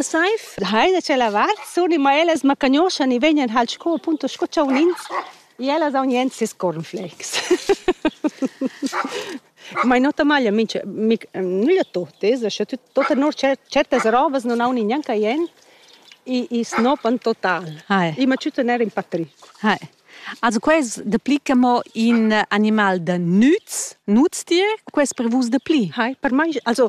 Saif, hai da ce lavar, suni ma ellas ma cagnoschan e vegnan hal sco appunto sco chaunins e ellas haun jent ses cornflakes. Ma in ota maglia minch mic nüglia totes, sche tut tota nur certas robas non haun gnanca jent e e snopan total. Hai. E ma tüta n'era in patric. Hai. Also quais deplicca mo in animal da nüz, nutztier, quais per vus depli? Hai, per mai also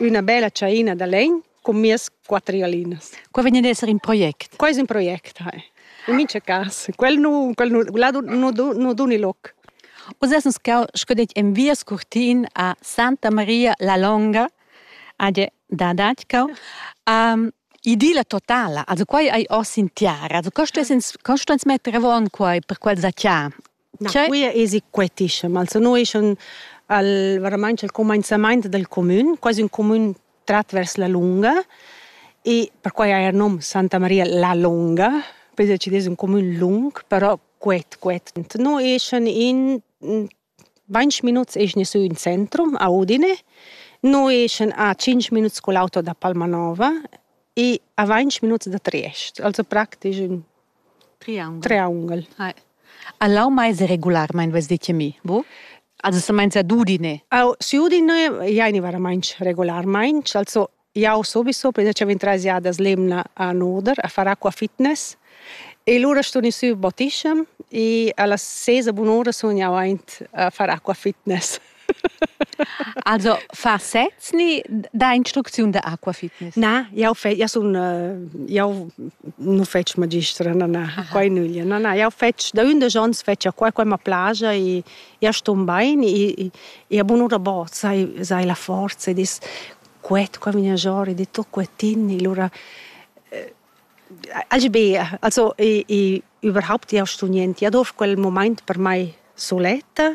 Üna bella tschaina da legn cun mias quatter galinas. Qua vegn ad esser in project? Quai es ün project, hai. In mincha cas. Quel nu, quel nu, là nu, nu duni loc. Oz es stau sco det en via scurtin a Santa Maria la Longa, ad da Datschau. Um, idilla totala, also quai hai oss in tiara, also co stess ins, co sto ins metter avon quai per quel zacchar? Na, quia esi quetischem, also no eschan al varamaint al cumainzamaint dal cumün, quasi ün cumün trat vers la lunga e perquai haja il nom Santa Maria la Lunga, poi decidess ün cumün lung, però quet, quet. No eschan in vainch minuts eschna sü in centrum a Udine, no eschan a tschinch minuts cul auto da Palmanova e a vainch minuts da Triest, also praktisch ün Triangel. A lau mais e regularmaing vess dit che mi, bu? Also semainza d'udiner. Eu s'udiner, i aini varamaing regularmaing, also jau subiso prima cha vin trais jadas l'emna a nuder, a far acqua fitness e lura stun i sü bottischem e a las ses e bunura sun jau aint a far acqua fitness. Also fa sez ni da instrucziun da acqua fitness? Na, jau fe, jau sun uh, jau nu fetsch magistra, na na, quai nüglia, na na, jau fetsch da ündesch ons fetsch acqua, quai ma plaja e ja ston bain e, e a bunura bo sai, sai la forza ed es quet qua vigna giò ed è tot quetin e lura Agi be, also, e, e überhaupt jau sto niente, ja dorf quel moment per mai soletta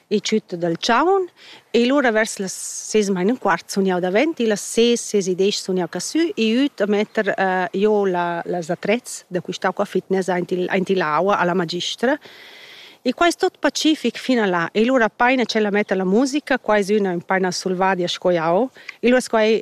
e tschütta dal chaun e lura vers las ses e mein un quart sun jau davent e las ses ses e desch sun jau casü e üt a metter uh, jo la, las attrezz da quistà qua fitness aint il, aint il aua alla magistra E quai è tot pacific fino a là. E lura paina c'è la metta la musica, qua è una paina solvadia sco jau. E lura quai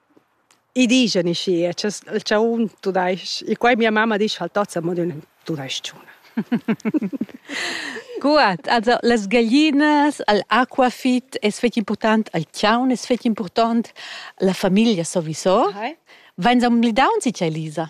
I dischan i schi, il chaun tudais-ch. E quai mia mamma disch al tat, mo ün tudais-chun. Gut, also las gaglinas, al aquafit es fetg important, al chaun es fetg important, la famiglia sowieso. Vains amblidauns ite, Elisa?